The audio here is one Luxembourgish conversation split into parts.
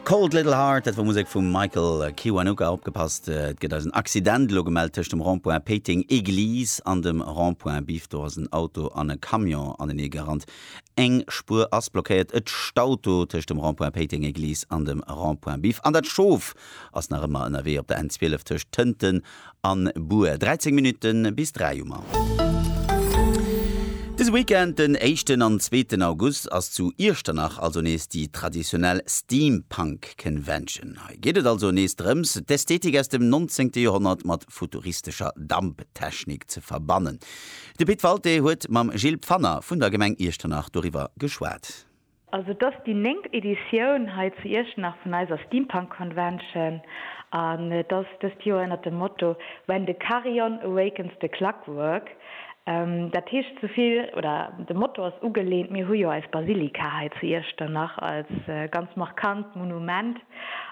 Cold Little Heart, dat wor Musek vum Michael Kiwanuka. Opgepasst, et gëtt eis en Accident elo gemellt tëscht dem Rond-point Péiteng Église an dem Rond-point Biff. Do ass en Auto an e Camion anenee gerannt. Eng Spuer ass blockéiert. Et staut do tëscht dem Rond-point Péiteng Église an dem Rond-point Biff. An dat Schof ass nach ëmmer ënnerwee op der N 12 tëscht Tënten A Bur, 13 Minutten bis 3 um An. Dëse Weekend, den éischten an zweeten August, ass zu Iechternach also nees déi traditionell Steampunk Convention. Hei geet et also nees drëms, d'Ästhetik aus dem nonzéngte Joerhonnert mat futuristescher Damptechnik ze verbannen. De Pit Walté huet mam Gilles Pfanner vun der Gemeng Iechternach doriwwer geschwat. Also et ass déi néngt Editioun hei zu Iechternach vun eiser Steampunk Convention an et ass dëst Joer ënnert dem Motto When the Carillon Awakens the Clockwork. Dat heescht esou vill, oder de Motto ass ugelehnt, mir hu jo eis Basilika hei zu Iechternach als ganz markant Monument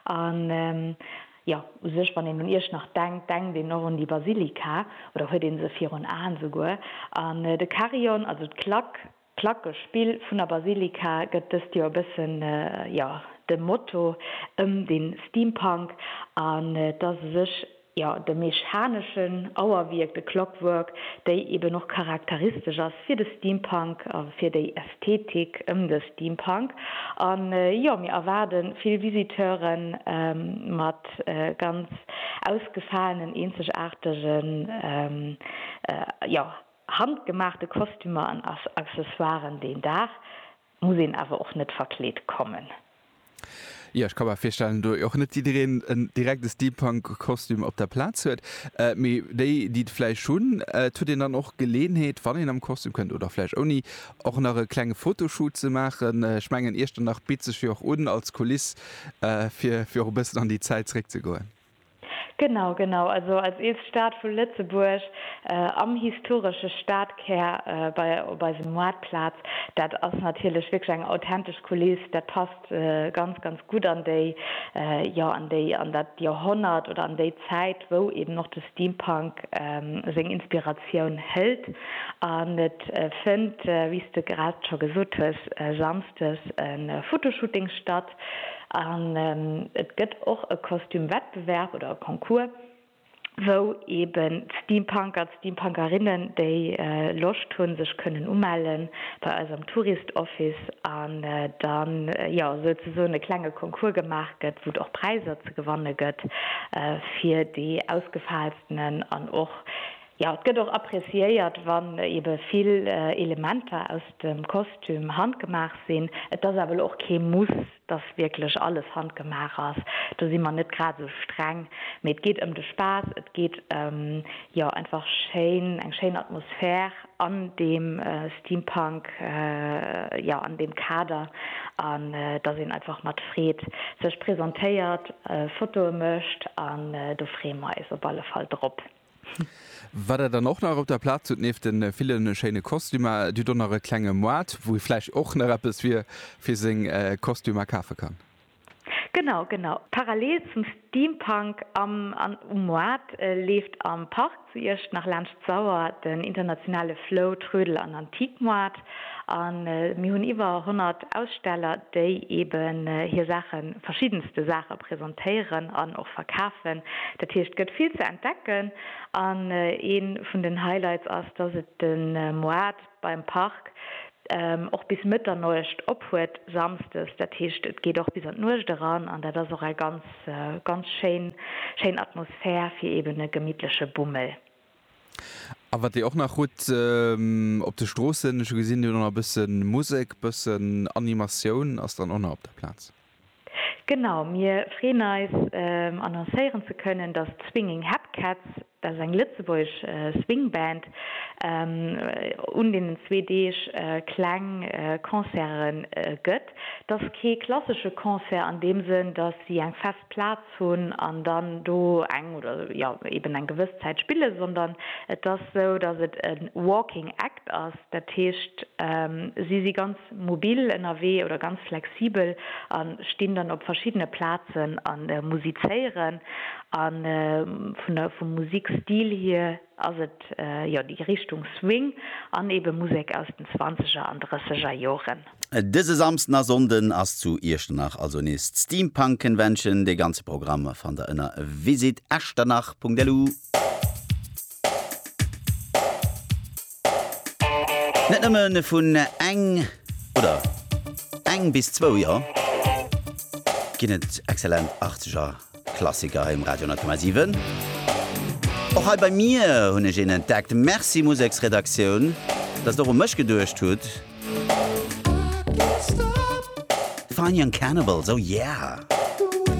an jo u sech wann een un Iechternach denkt, denkt een och un déi Basilika oder huet ee se virun Aen esouguer an de Carillon, also d'Klack, D'Placke Spill vun der Basilika gëtt dëst Joer e bëssen, jo, dem Motto ëm de Steampunk an et ass u sech, jo, de mechaneschen Auerwierk, de Clockwork, déi eben och charakteristesch ass fir de Steampunk a fir déi Ästhetik ëm de Steampunk. An, jo, mir erwaarde vill Visiteure mat ganz ausgefaalen, eenzegaartegen, jo, Handgemaachte Kostümer an Accessoiren, deen Dag muss een awer och net verkleet kommen. Jo, ech ka mer virstellen, do och net jiddereen en direkte Steampunk-Kostüm op der Plaz huet. Mee déi, déi et vläicht hunn, et huet een dann och d'Geleeënheet, wann een am Kostüm kënnt, oder vläicht ouni, och nach e klenge Fotoshoot ze maachen. Ech mengen, Iechternach bitt sech jo och un als Kuliss, fir och e bëssen an déi Zäit zeréckzegoen. Genau, genau. Also als eelst Stad vu Lëtzebuerg, am historesche Stadkär, bei op eisem Maartplaz, dat ass natierlech wierklech eng authentesch Kuliss. Dat passt ganz, ganz gutt an déi, jo, an déi, an dat Joerhonnert oder an déi Zäit, wou eben och de Steampunk seng Inspiratioun hëlt. An et fënnt, wéi s de grad scho gesot hues, samsdes e Fotoshooting statt. Fest. An et gëtt och e Kostüm-Wettbewerb oder e Concours, wou eben d'Steampunker, d'Steampunkerinnen, déi Loscht hunn, sech kënnen umelle bei eis am Tourist Office an da jo souzesoen e klenge Concours gemaach gëtt, wou et och Präiser ze gewanne gëtt fir déi ausgefaalstenen an och, Jo, et gëtt och appreciéiert, wann ebe vill Elementer aus dem Kostüm handgemaach sinn. Et ass awer elo och kee Muss, dass wierklech alles handgemaach ass. Do si mer net grad esou streng. Mee et geet ëm de Spaass, et geet ëm, jo, einfach schéin, eng schéin Atmosphär an deem Steampunk, jo, an deem Kader. An dass een einfach mat Freed sech presentéiert, Fotoe mécht. An do freeë mer eis op alle Fall drop. Wat der dann och nach op der Plaz hutt, nieft de ville schéine Kostümer, Dir hutt och nach e klenge Moart, wou ee vläicht och nach eppes fir seng Kostümer kafe kann. Genau, genau. Parallel zum Steampunk am an um Moart leeft am Park zu Iecht nach laanscht d'Sauer den internationale Flow, Trödel an Antiquemoart. A mir hunn iwwer 100 Aussteller, déi eben hir Saachen, verschiddenste Saache presentéieren an och verkafen. Dat heescht, et gëtt vill ze entdecken. An ee vun den Highlights ass, dass et de Moart beim Park och bis Mëtternuecht op huet, samsdes. Dat heescht, et geet och bis an d'Nuecht eran. An dat ass och eng ganz, ganz schéin, schéin Atmosphär fir eben e gemittleche Bummel. A wat Dir och nach hutt op de Stroossen, ech hu gesinn, Dir hutt och nach e bësse Musek, bëssen Animatioun ass dann och nach op der Plaz. Genau, mir freeën eis annoncéieren ze kënnen, datt d'Swinging Hepcats, dat ass eng lëtzebuergesch Swingband, un deenen zwee Deeg kleng Concerte gëtt. Dat ass kee klassesche Concert an deem Sënn, datt si eng fest Plaz hunn an dann do eng oder jo eben eng gewëss Zäit spillen, sondern et ass esou, dass et e walking act ass, dat heescht si si ganz mobil ënnerwee oder ganz flexibel a stinn dann op verschiddene Plazen a musizéieren. A vun der vum Musikstil hier ass et jo déi Richtung Swing an eben Musek aus den zwanzeger an drësseger Joren. Dëse Samsden a Sonnden ass zu Iechternach also nees d'Steampunk Convention. De ganze Programm fannt der ënner visitechternach.lu. Net nëmmen vun eng oder eng bis zwou Joer ginn et excellent Artger. Klassiker hei um Radio 10,7. Och hei bei mir hunn ech een entdeckt. Merci Museksredaktioun, dass der u mech geduecht hutt. Fine Young Cannibals, oh yeah!